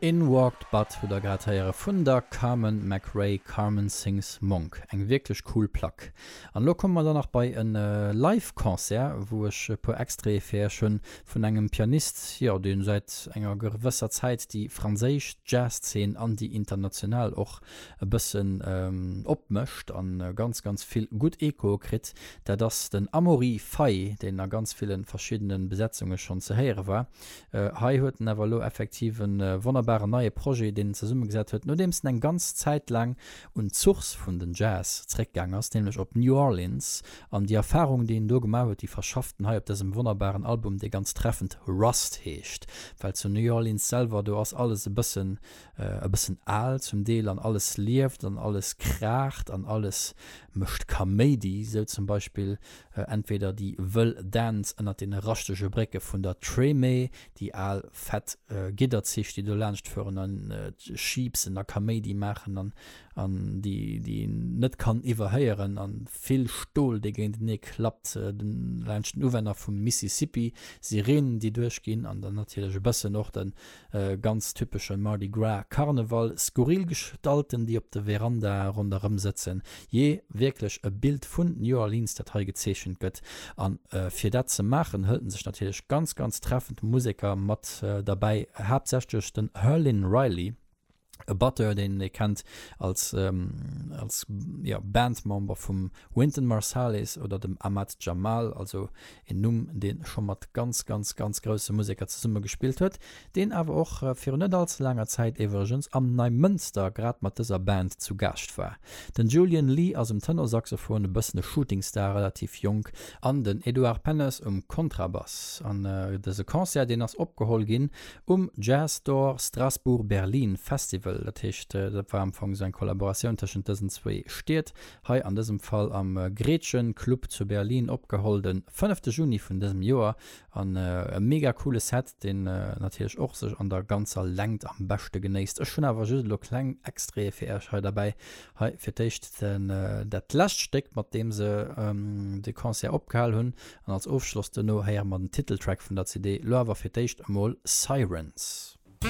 In Walked Butt hutt der grad héiere vun der Carmen McRae, Carmen Sings Monk. Eng wierklech cool Plack. An elo komme mer dann nach bei e Live Concert, wou ech e puer Extraite fir iech hunn, vun engem Pianist, jo, dee säit enger gewësser Zäit déi franséisch Jazzszen an déi international och e bëssen opmëscht a ganz, ganz vill gutt Echoe kritt. Dat ass den Amaury Fay, deen a ganz ville verschiddene Besetzunge schonn ze héiere war. Hei huet en awer elo effektiv e wonnerbaren neie Projet, deen en zesummegesat huet, nodeems en eng ganz Zäit laang un d'Source vun den Jazz zeréckgaang ass, nämlech op New Orleans. An déi Erfarung, déi en do gemaach huet, déi verschafft en hei op dësem wonnerbaren Album, dee ganz treffend Rust heescht, well zu New Orleans selwer, do ass alles e bëssen e bëssen al zum Deel an alles lieft an alles kraacht an alles mécht Kaméidi, sou zum Beispill entweder déi wëll Dänz ënnert deene raschtege Brécke vun der Treme, déi al fett Gidderzich, déi do laanscht fueren a schiibsen a Kaméidi maachen an déi een net kann iwwerhéieren, a vill Stol, dee géintenee klappt laanscht den Uwänner vum Mississippi, Sireenen, déi duerchginn an dann natierlech e bëssen och de E ganz typesche Mardi Gras Karneval, skurril Gestalten déi op de Veranda ronderëm sëtzen, jee wierklech e Bild vun New Orleans dat hei gezeechent gëtt. A fir dat ze maachen hëlt en sech natierlech ganz ganz treffend Museker mat derbäi, haaptsächlech den Herlin Riley, e Batteur, deen ee kennt als, ähm, als ja, Bandmember vum Wynton Marsalis oder dem Ahmad Jamal, also en Numm, dee scho mat ganz, ganz, ganz grousse Museker zesummegespillt huet, deen awer och virun net all ze laanger Zäit iwwregens am Neimënster grad mat dëser Band zu Gaascht war. Den Julian Lee ass um Tenorsaxophon, e bëssen e Shootingstar, relativ jonk, an den Edouard Pennes um Kontrabass. An dëse Concert, deen ass opgeholl ginn Um Jazz Door Strasbourg Berlin Festival, dat heescht dat war am Fong esou eng Kollaboratioun tëschent dësen zwee Stied, hei an dësem Fall am Gretchen Club zu Berlin opgeholl den fënnefte Juni vun dësem Joer an e mega coole Set, deen natierlech och sech an der ganzer Längt am beschte genéisst. Ech hunn awer just elo kleng Extraite fir Iech hei derbäi. Hei fir d'éischt dat lescht Stéck mat deem se de Concert opgehal hunn An als Ofschloss duerno héiere mer den Titeltrack vun der CD, lo awer fir d'éischt emol Sirens.